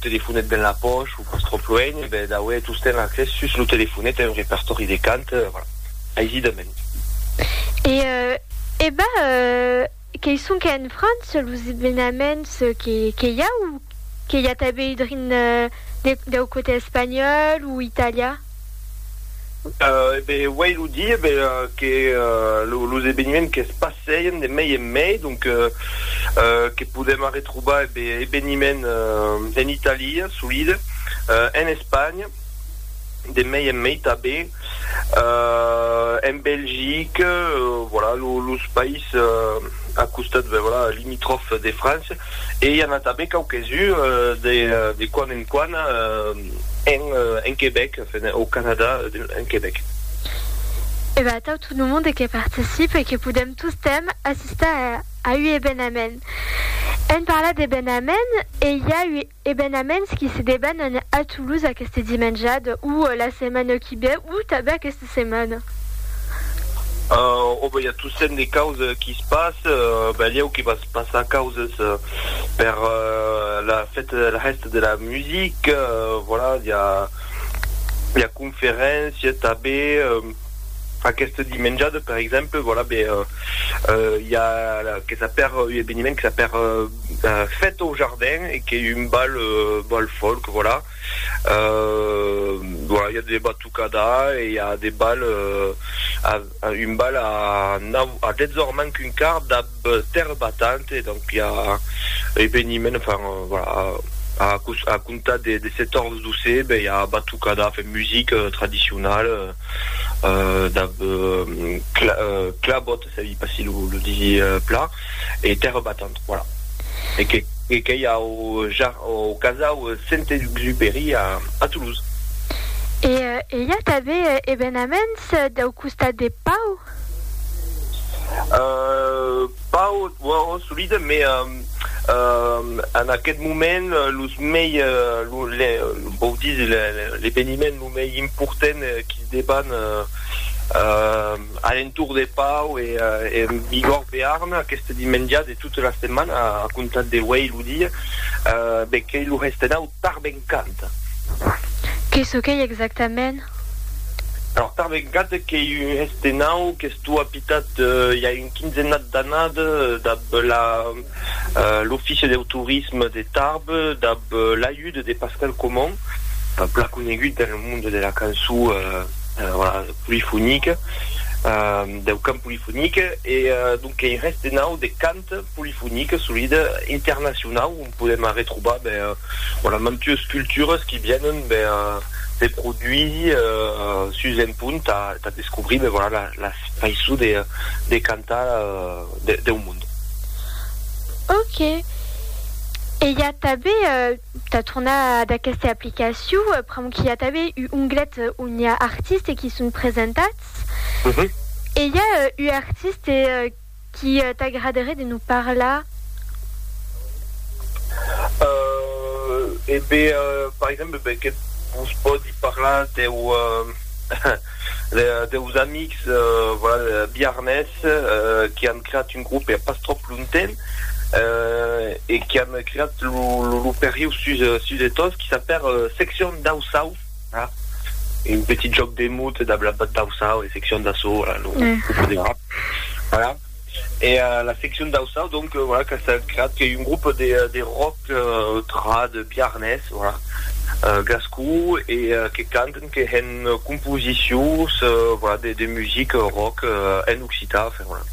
Telefonet ben la pòch o pas tròp luenh, e ben d'aué tostemp accès sus lo telefonet a un repertòri de cant, voilà, aisidament. E e ben, qu'ei sonque en França los evenaments que i a, o que i a tanben drin deu cotè espanhòl o italià? E ben, uèi lo di, e ben, que los eveniments que's passèien de mei en mei, donc, que podèm arretrobar, e ben, eveniments en Italia, solide, en Espanha, de mei en mei tanben, en Belgique, voilà, los païses a costat, ben, voilà, limitròfs de França. e i an a tanben quauques uns de de quan en quan en en Quebec, enfin au Canada en Quebec. E ben atau tot lo monde que participe e que podem tostemp assistar a ua ebenament. Èm parlat d'ebenament e i a ua. Evenaments qui se debanan a Toulouse aqueste dimenjad o la setmana qui ve o tanben aquesta setmana? Ò ben i a tossent de causes qui se passe, belieu que va se passar causes per la fête de la hèsta de la musique, voilà, i a conferéncia tanben. Aqueste dimenjade, per exemple, voilà, be, euh, i a que s'a per un eveniment que s'a per fête au jardin e qu'ei un bal, bal folk, voilà. Euh, voilà, i a de batucada e i a de bal, un bal a nau, a 10 ors manc un quart dab, Terre battante, donc i a eveniment, enfin, voilà, a, a comptar de, de 14 d'océ, ben i a batucada, enfin, musique tradicionale, euh, da, euh, cla, euh, clabot, ça dit pas si lo, lo disi pla, e terre battante, voilà. E que, e que i a au, ja, au casau Saint-Exupéry a, a Toulouse. E, e i a tanben evenaments dau costat de Pau? Pas ò ò solide, mais en aquest moment los mei vòu dire l'eveniment lo mei important qu'i deban alentour de Pau e en Bigòrd Bearn aqueste dimenja de tota la setmana a comptar d'auei lo dia, be qu'ei lo Restenau. Tarbencant. Que çò qu'ei exactament? Alors, Tarbencant qu'ei un hestenau qu'estó apitat i a un quinzenat d'anat dab la l'Office deu Tourisme de Tarbes dab l'ajut de Pascal Comon, plan conegut dans le monde de la cançó polifonique, deu cant polifonique e donc qu'ei un hestenau de cant. polifonique solide internacionau ont podèm arretrobar ben voilà mantues cultures qui vienen ben se produir sus un punt tà tà descobrir ben voilà la la faiçon de de cantar de deu mond. Ok. E i a tanben tà tornar ad aquesta aplicacion pr'amor qu'i a tanben un onglet ont i a artistes qui son presentats e i a un artiste Qu'i t'agraderé de nous parlar? Euh, e be, par exemple, be que vos pòdi parlar deu, deus amics, voilà, biarnés, qu'i an creat un grup ea pas tròp lontemps, e qu'i an creat lo, lo, lo perriu sus, sus de Tos, qu'i s'apèr Seccion dau Sau. un petit jòc de mot dab la part d'Auçau e seccion d'Açò, voilà, lo voilà, voilà e la seccion d'Auçau donc voilà que s'est creat que un groupe de de rock trad biarnés, voilà, gascon e que canten que hèn composicions voilà de de music rock en occitan, enfin voilà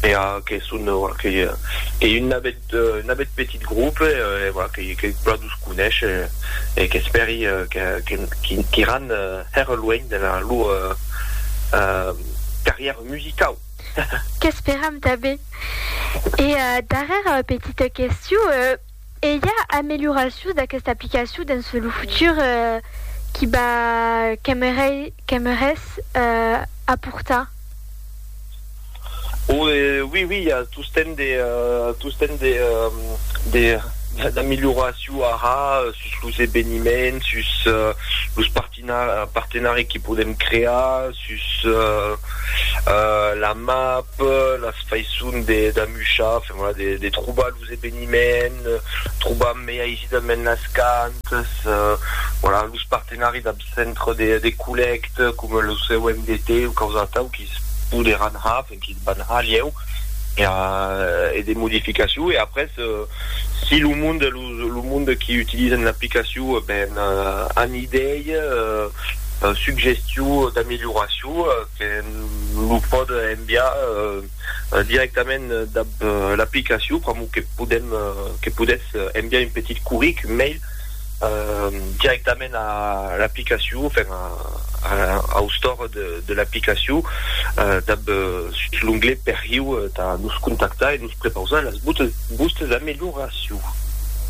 e que son que que un navet d'un abet petit groupe que todos coneishen e qu'espèri qu'iràn hèr luènh de la lor carrièra musicau. Qu'esperam tanben. E darrèra petita question, e i a amelioracions d'aquesta aplicacion dens lo futur qui va qu'aimerais aportar? O e oui oui i a tostemp de tostemp de de d'amilhoraciu ara sus los eveniments sus los partina partenari que podem crear sus la map las faisson de d'amuchar enfin voilà de de trobar los eveniments, trobam mei aisidament las cantas, voilà, los partenari dab centre de de collècte coma lo COMDT o quaus atau qui's poderàn ha, enfin qui's van ha lieu per e de modificaciu e après si lo monde los lo monde qui utilisen l'aplicaciu ben an idei, suggestiu d'amelioraciu que lo pòde enviar. directament dab l'aplicacion pr'amor que podem que podètz enviar un petit curric mail directament a l'aplicacion enfin au store de l'aplicacion dab sus l'onglet perriu tà nos contactar e nos prepausar las vòstes amelioracions.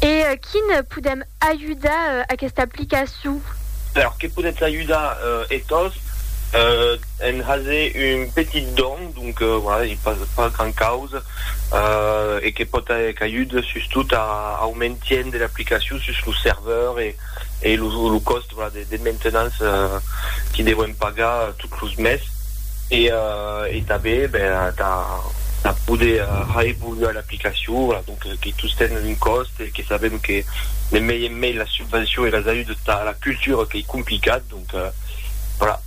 E quin podem ajudar aquesta aplicacion? Alors que podètz ajudar e-tòs en haser un petit don. Donc, voilà, ei pas pas grand causa, e que pòt aer cagut sustot a au maintien de l'aplicacion sus lo serveur e e lo lo còst, voilà, de de maintenance que devem pagar tot los mes, e e tanben, ben, tà tà poder reevoluar l'aplicacion, voilà, donc que tous ten un còst e que sabem que de mei en mei las subvencions e las ajudes tà la cultura qu'ei complicat, donc, voilà.